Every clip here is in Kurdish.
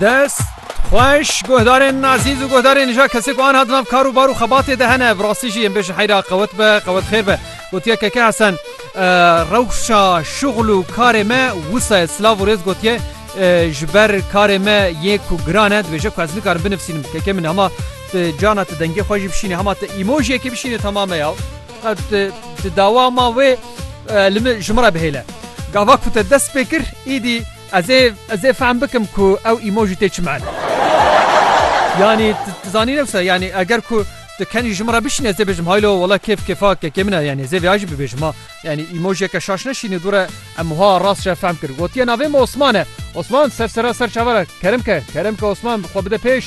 Dest xweş guhdarên ezîz û guhdarên nîja kesê ku anha di nav kar û bar û xebatê de hene bi rastî jî em bêjin heyra qewet be qewet xêr be gotiye Keke Hesen rewşa şixul û karê me wisa ye silav û rêz gotiye ji ber karê me yê ku giran e dibêje ku ez nikarim binivîsînim Keke min hema tu cana tu dengê xwe jî bişînî hema tu îmojiyekê bişînî temam e ya qet tu dawa ma wê li min ji min re bihêle gava ku te dest pê kir îdî Ez ê ez ê fehm bikim ku ew emoji tê çi mane. Yanî tu tu zanîn ew sa yanî eger ku tu kenî ji min re bişînî ez ê bêjim haylo wela kêf kêfa kekê min e yanî ez ê vêya jî bibêjim ha. Yanî emojiyeke şaş neşînî dûr e em wiha rast re fehm kirin. Gotiye navê min Osman e. Osman ser sera ser çavan e. Kerim ke kerim ke Osman xwe bide pêş.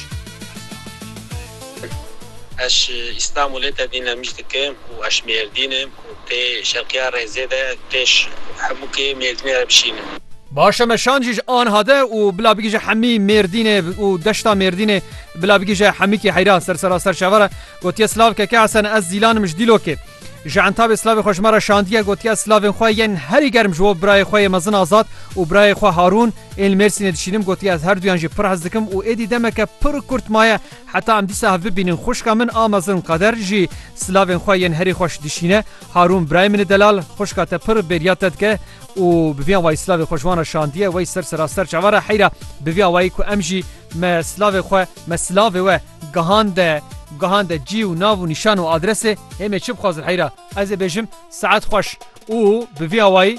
Eş Îstanbulê tevî Nemij dikim û eş Mêrdîn im. Tê şerqiya rêzê de pêş hemû kê Mêrdînê re bişînin. Baş e me şand jî ji anha de û bila bigihje hemî Mêrdînê û deşta Mêrdînê bila bigihje hemîkî heyra ser serasser şeva re. Gotiye silav ke ke esen ez zîlanim ji Dîlokê. Ji entabê silavê xwe ji me re şandiye gotiye ez silavên xwe yên herî germ ji bo birayê xwe yê mezin Azad û birayê xwe Harûn ên li Mêrsînê dişînim gotiye ez herduyan jî pir hez dikim û êdî demeke pir kurt maye Heta em dîsa hev bibînin xwişka min a mezin Kader jî silavên xwe yên herî xweş dişîne. Harûn birayê min e delal, xwişka te pir bêriya te dike û bi vî awayî silavê xwe ji wan re şandiye, wey ser sera ser çavan re heyra bi vî awayî ku em jî me silavê xwe, me silavê we gihande gihande cî û nav û nîşan û adresê. Hê me çi bixwazin heyra ez ê bêjim saet xweş û bi vî awayî.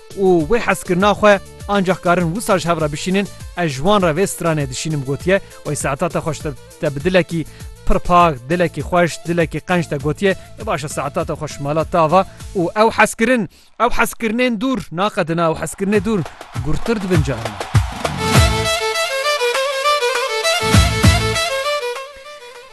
û wê hezkirina xwe ancax karin wisa ji hev re bişînin, ez ji wan re vê stranê dişînim gotiye wê saeta te xweş te bi dilekî pir pak, dilekî xweş, dilekî qenc te gotiye e baş e saeta te xweş mala te ava û ew hezkirin ew hezkirinên dûr naqedina ew hezkirinê dûr gurtir dibin carina.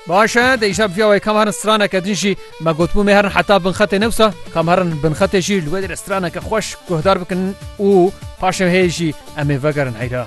Baş e, dê îşa bivîya wê kam herin straneke din jî me gotbû mê herin heta bin xetê ne wisa kam herin bin xetê jî li wê dê re straneke xweş guhdar bikin û paşê wê hê jî em ê vegerin heyra.